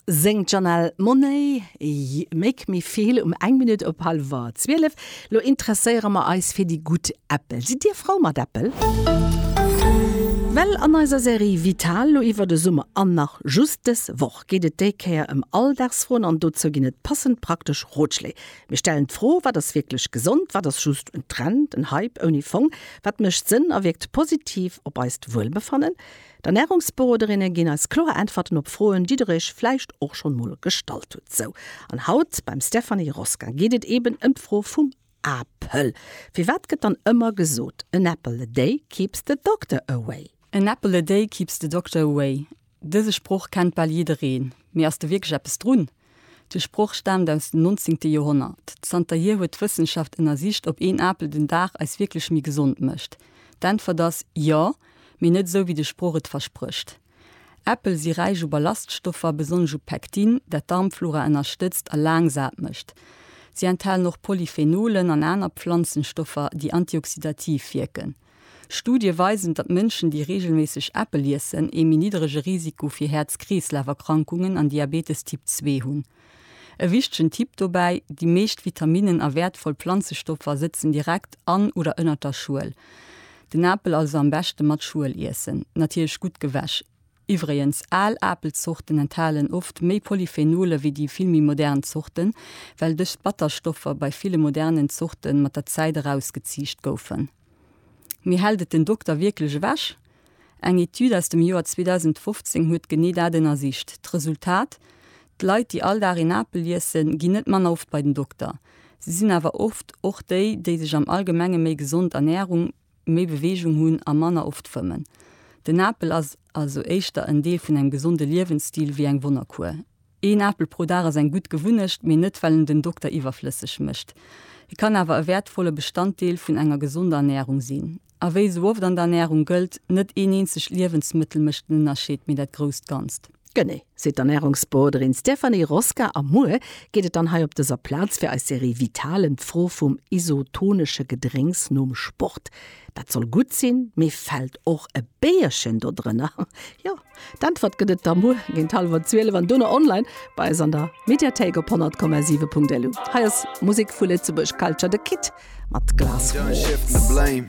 Séngt d'Janelle Monáe You make me feel um eng Minutt op hallwer zwielef. Lo interesséiere mer eis fir déi gutt Äppel. Sidd Dir frou mat Äppel? Well an eiser Serie Vital lo iwwer de Summer an nach just dës Woch geet et déi Kéier ëm Alldagsfroen an dozou ginn et passend praktesch Rotschléi. Mir stellen d'Fro, Wat ass wierklech gesond? Wat ass just en Trend, en Hype ouni Fong? Wat mécht Sënn a wierkt positiv op eist Wuelbefannen? D'Ernärungsberoderinne ginn eis kloer Äntwerten op Froen, déi der iech vläicht och schonn mol gestallt hutt. Sou an haut beim Stéphanie Rosca geet et eben ëm d'Fro vum Apel. Firwat gëtt dann ëmmer gesot, An apple a day keeps the doctor away? An apple a day keeps the doctor away, dëse Sproch kennt bal jiddereen, mee ass do wierklech eppes drun? De Sproch staamt aus dem 19. Joerhonnert. Zanterhier huet d'Wëssenschaft ënnersicht, ob een Apel den Dag eis wierklech méi gesond mécht. D'Äntwert ass, Jo, mee net esou, wéi de Sproch et versprécht. Äppel si räich u Ballaststoffer, besonnesch u Pektin, dat d'Darmflora ënnerstëtzt a laang sat mécht. Si enthalen och Polyphenolen an aner Pflanzenstoffer, déi antioxidativ wierken. Studie weisen, datt Mënschen, déi reegelméisseg Äppel iessen, ee méi niddrege Risiko fir Häerz-Kreeslaf-Erkrankungen an Diabetes Typ 2 hunn. E wichtegen Tipp dobäi, Déi meescht Vitaminnen a wäertvoll Planzestoffer sëtzen direkt an oder ënnert der Schuel. Den Apel also am beschte mat Schuel iessen, natierlech gutt gewäsch. Iwwregens, al Apelzorten enthalen oft méi Polyphenolen wéi déi vill méi modern Zorten, well dës Batterstoffer bei ville modernen Zorten mat der Zäit erausgeziicht goufen. Mee hält et den Dokter wierklech ewech? Eng Etüd aus dem Joer 2015 huet genee dat ënnersicht. D'Resultat, D'Leit, déi all Dag een Apel iessen, ginn net manner oft bei den Dokter. Si sinn awer oft och déi, déi sech am Allgemenge méi gesond ernährung. méi Beweegung hunn a manner oft fëmmen. Den Apel ass also éischter en Deel vun engem gesonde Liewensstil wéi eng Wonnerkuer. Een Apel pro Dag ass eng gutt Gewunnecht, mee net well en den Dokter iwwerflësseg mécht. E kann awer e wäertvolle Bestanddeel vun enger gesonder Ernärung sinn. A wéi esou oft an der Ernärung gëllt, Net een eenzegt Liewensmëttel mécht den Ënnerscheed, mee dat grousst Ganzt. Genee, seet d'Ernärungsberoderin Stéphanie Rosca a muer geet et dann hei op dëser Plaz fir eis Serie Vital ëm d'Fro vum isotonesche Gedrénks nom Sport. Dat soll gutt sinn, mee fält och e Béierchen do drënner? Jo, d'Äntwert gëtt et da muer géint hallwer zwielef an dono online bei eis an der Mediathéik op 100,7.lu. Hei ass Musek vu Lëtzebuerg Culture, The Kid mat Glass Wall.